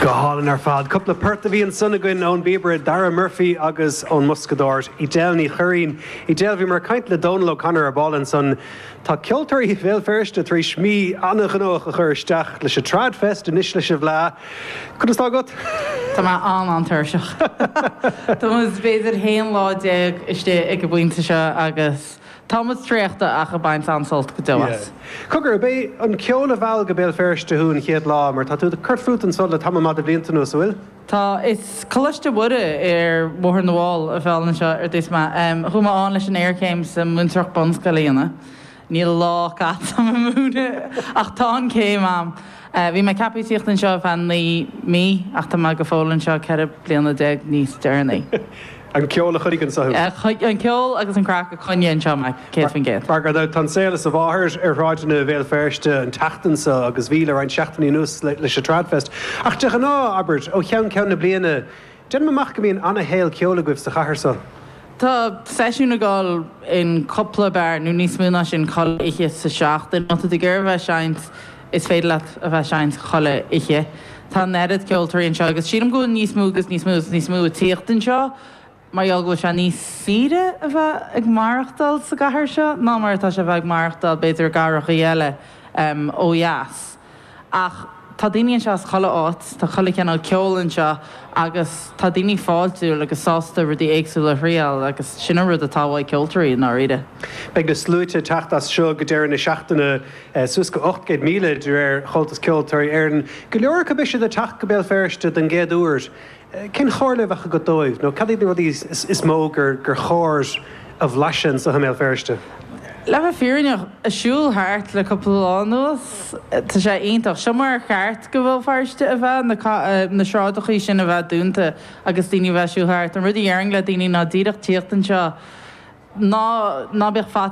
Go hálainn ar fad. Cúpla port a bhí ansan againn ón bpíobaire Dara Murphy agus ón mboscadóir Edel Ní Churraoin. Edel, bhíomar ag caint le Dónal O'Connor ar ball ansan. Tá ceoltóirí Bhéal Feirste tar éis mí an-ghnóthach a chur isteach leis an Trad Fest anois leis an bhFleadh. Conas atá agat? Tá mé an-an-tuirseach. Tá muid b'fhéidir haon lá déag istigh ag an bpointe seo agus Tá muid traochta ach ag baint an-sult go deo as. Yeah. Cogar, ab é an ceol a mheall go Béal Feirste thú an chéad lá, mar tá tú ag cur fút anso le tamall maith de bhlianta anuas, an bhfuil? Tá. Is Coláiste Mhuire ar Bhóthar na bhFál a mheall anseo ar dtús mé. Chuaigh mé ann leis an iarchéim sa Mhúinteoireacht Bunscoile a dhéanamh. Níl lá caite agam ag múineadh ach tá an céim agam. Bhí mé ag ceaptha tíocht anseo ar feadh naoi mí ach tá mé go fóill anseo ceithre bliana déag níos deireanaí. An ceol a choinnigh anso thú. An ceol agus an craic a choinnigh anseo mé, céad faoin gcéad. Mar gan dabht, tá an saol as a mháthair ar shráideanna Bhéal Feirste an tseachtain seo agus bhí le roinnt seachtainí anuas leis an Tradfest. Ach de ghnáth, abair, ó cheann ceann na bliana, déanaim amach go mbíonn ana-shaol ceoil agaibh sa chathair seo. Tá seisiún ag dul in cúpla beár, nó níos mó ná sin, chuile oíche sa seachtain, má tá tú ag iarraidh a bheith ag seinnt. Is féidir leat a bheith ag seinnt chuile oíche. Tá an oiread ceoltóirí anseo agus sílim go bhfuil níos mó agus níos mó agus níos mó ag tíocht anseo mar gheall go bhfuil sé níos saoire a bheith ag maireachtáil sa gcathair seo ná mar atá sé a bheith ag maireachtáil b'fhéidir i gcathrachaí eile ó dheas. Ach tá daoine anseo as chuile áit, tá chuile chineál ceoil anseo agus tá daoine fáiltiúil agus sásta rudaí éagsúla a thriáil agus sin an rud atá ó cheoltóirí i ndáiríre. Beidh na sluaite ag teacht as seo go deireadh na seachtaine. suas go 800,000 de réir Chomhaltas Ceoltóirí Éireann, go leor acu b'fhéidir ag teacht go Béal Feirste don gcéad uair. Cén chomhairle a bheadh agat dóibh nó cad iad na rudaí is mó gur chóir a bhlaiseadh anseo i mBéal Feirste? Le bheith fírinneach, ag siúl thart le cúpla lá anuas, tá sé iontach. Seo mar ar cheart do Bhéal Feirste a bheith, na sráideachaí sin a bheith dúnta agus daoine a bheith ag siúl thart. An rud a dhéarfainn le daoine ná díreach tíocht anseo, ná bíodh faitíos